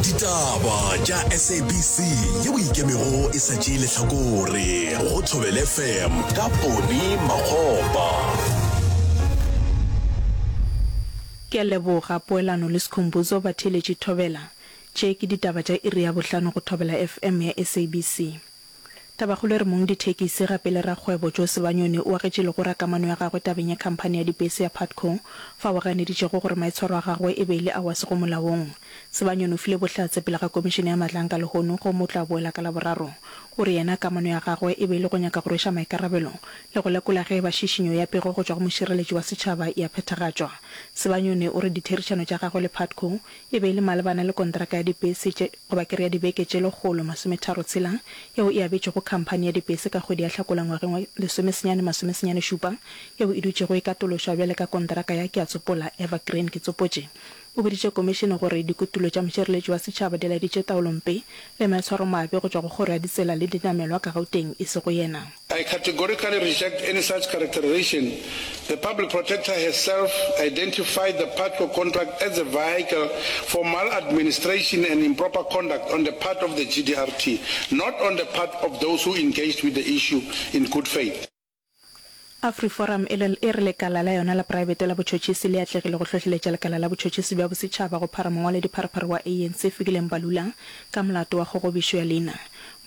ditaba tša sabc yeo ikemego e sa tšee lehlakore go thobel fm ka pone magopa ke a leboga poelano le sekhombuzo batheeletši thobela tše ke ditaba tša iri ya bohlano go thobela fm ya sabc Tabakgolo e re mong dithekisi gape le rakgwebo Joe Sebanyoni o agetše legora kamano ya gagwe tabeng ya khamphani ya dibese ya Putco fao a ganeditšego gore maitshwaro a gagwe e be e le ao a sego molaong. Sebanyoni o file bohlatse pele ga Komišene ya Matlanka lehono gomme o tla boela ka Laboraro. O re yena kamano ya gagwe e be e le go nyaka go rweša maikarabelo le go lekola ge e ba šišinyo ya pego go tšwa go mošireletši wa setšhaba e a phethagatšwa. Sebanyoni o re ditherišano tša gagwe le Putco E be e le malebana le kontraka ya dibese tše, goba ke re ya dibeke tše lekgolo masometharo tshela, yeo e abetšwego khamphani ya dibese ka kgwedi ya Hlakola ngwageng wa lesomesenyane masome senyane šupa, yeo e dutšego e katološwa bjale ka kontraka ya, ke a tsopola, Evergreen. Ke tsopotše o boditše Komišene gore dikutulo tša mošireletši wa setšhaba di laeditše taolompe le maitshwaromabe go tšwa go kgoro ya ditsela le dinamelwa ka Gauteng, e sego yena. I categorically reject any such characterization. The Public Protector has self identified the Patlo contract as a vehicle for maladministration and improper conduct on the part of the GDRT, not on the part of those who engaged with the issue in good faith. AfriForum e e re lekala la yona la praebete la botšhotšhisi le atlegile go hlohleletša lekala la botšhotšhisi bja bosetšhaba go phara mongwaledipharephare wa ANC Fikile Mbalula ka molato wa kgogobišo ya leina.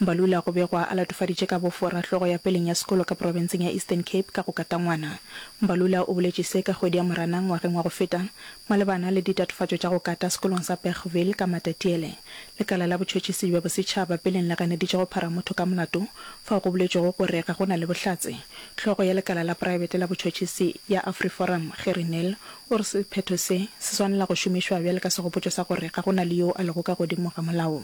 Mbalula go begwa a latofaditše ka bofo rahlogo ya peleng ya sekolo ka profenseng ya Eastern Cape ka go katangwana. Mbalula o boletše se ka kgwedi ya Moranang ngwageng wa go feta. Malebana le ditatofatšo tša go kata sekolong sa Bergville ka Matatiele, lekala la botšhotšhisi bja bosetšhaba peleng le ganeditše go phara motho ka molato fao go boletšwego gore ga go na le bohlatse. Hlogo ya lekala la praebete la botšhotšhisi ya Afriforum, Gerrie Nel, o re sephetho se, se swanela go šomišwa bjale ka segopotšo sa gore ga go na le yo a lego ka godimo ga molao.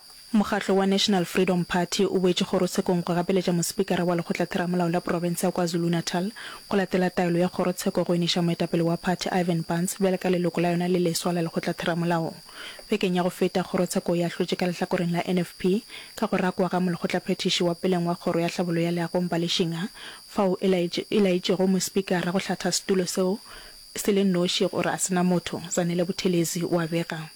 Mokgatlo wa National Freedom Party o boetše kgorotshekong go gapeletša Mospikara wa Lekgotlatheramolao la Profense ya KwaZulu-Natal go latela taelo ya kgorotsheko go iniša moetapele wa phathi Ivan Barns bjale ka leloko la yona le leswa la Lekgotlatheramolao. Bekeng ya go feta, kgorotsheko e ahlotše ka lehlakoreng la NFP ka go rakwa ga molekgotlaphethiši wa peleng wa Kgoro ya Tlhabollo ya Leago Mbali Shinga fao e laetšego Mospikara go hlatha setulo seo se le noši gore a se na motho. Zanele Buthelezi o a bega.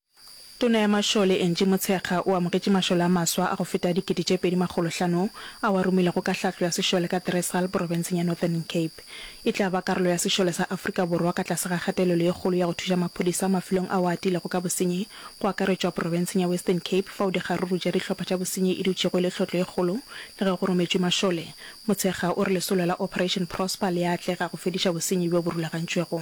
Tona ya Mašole, Angie Motshekga, o amogetše mašole a maswa a go feta dikete tše pedi makgolo hlano ao a romilwego ka hlahlo ya sešole ka Thresal, porofenseng ya Northern Cape. E tla ba karolo ya sešole sa Afrika Borwa ka tlase ga kgatelelo ye kgolo ya go thuša maphodisa mafelong ao a atilego ka bosenyi, go akaretšwa porofenseng ya Western Cape fao dikgaruru tša dihlopha tša bosenyi e dutšego e le tlhotlo e kgolo le ge go rometšwe mašole. Motshekga o re lesolo la Operation Prosper le a atlega go fediša bosenyi bjo bo rulagantšwego.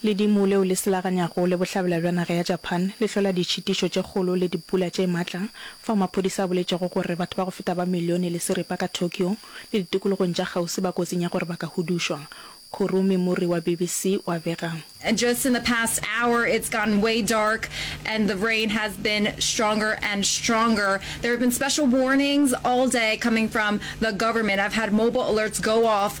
Ledimo leo le selaganyago le bohlabela bja naga ya Japan le hlola ditšhitišo tše kgolo le dipula tše matla, fao maphodisa a boletšego gore batho ba go feta ba milione le seripa ka Tokyo le ditikologong tša kgauswi ba kotsing ya gore ba ka hudušwa. Kurumi Muri wa BBC o a bega. Just in the past hour it's gotten way dark and the rain has been stronger and stronger. There have been special warnings all day coming from the government. I've had mobile alerts go off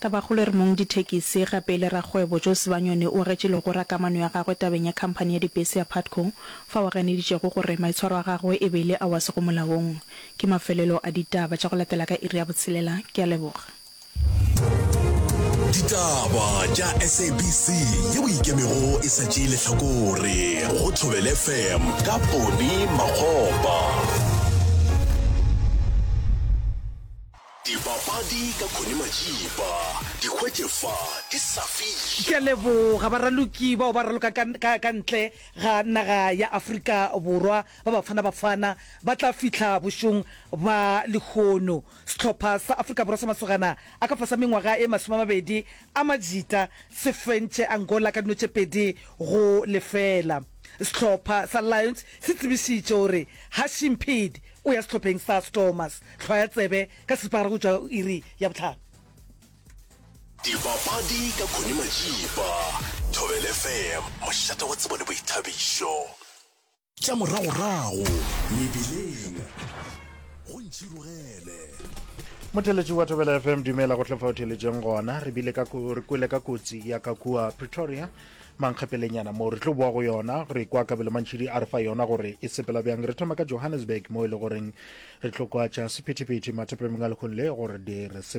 Tabakgolo e re mong dithekisi gape e le rakgwebo Joe Sibanyoni o agetše legora ka mano ya gagwe tabeng ya khamphani ya dibese ya Putco fao a ganeditšego gore maitshwaro a gagwe e be e le ao a sego molaong. Ke mafelelo a ditaba tša go latela ka iri ya botshelela. Ke a leboga. Ditaba tša SABC ye o ikemego e sa tšee lehlakore go Thobele FM ka Bony Makgopa. Dipapadi ka Connie Matšipa, di hwetše fa, di sa fihle. Ke a leboga baraloki bao ba raloka ka, ka, ka ntle ga naga ya Afrika Borwa, ba Bafana Bafana ba tla fihla bošong ba lehono. Sehlopha sa Afrika Borwa sa masogana a ka fasa mengwaga e masome a mabedi a majita se fentše Angola ka dino tše pedi go lefela. Sehlopha sa Lions se tsebišitše gore Hashim Peed, O ya sehlopheng sa Stormers, hlwa ya tsebe, ka seripagare go tšwa iri ya bohlano. Dipapadi ka Connie Majiba, Thobela FM, mošate wa tsebo le boithabišo. Tša moragorago mebileng go ntširogele. Motheletši wa Thobela FM, dumela go tle fa o theletšeng gona. Re bile ka re kwele ka kotsi ya ka kua Pretoria Mankgepelenyana moo, re tlo boa go yona. Re kwa Kabelo Mantšhidi a re fa yona gore e sepela bjang. Re thoma ka Johannesburg moo e le goreng re tlo kwa tša sephethephethe mathapameng a lekgong le gore di re sepela.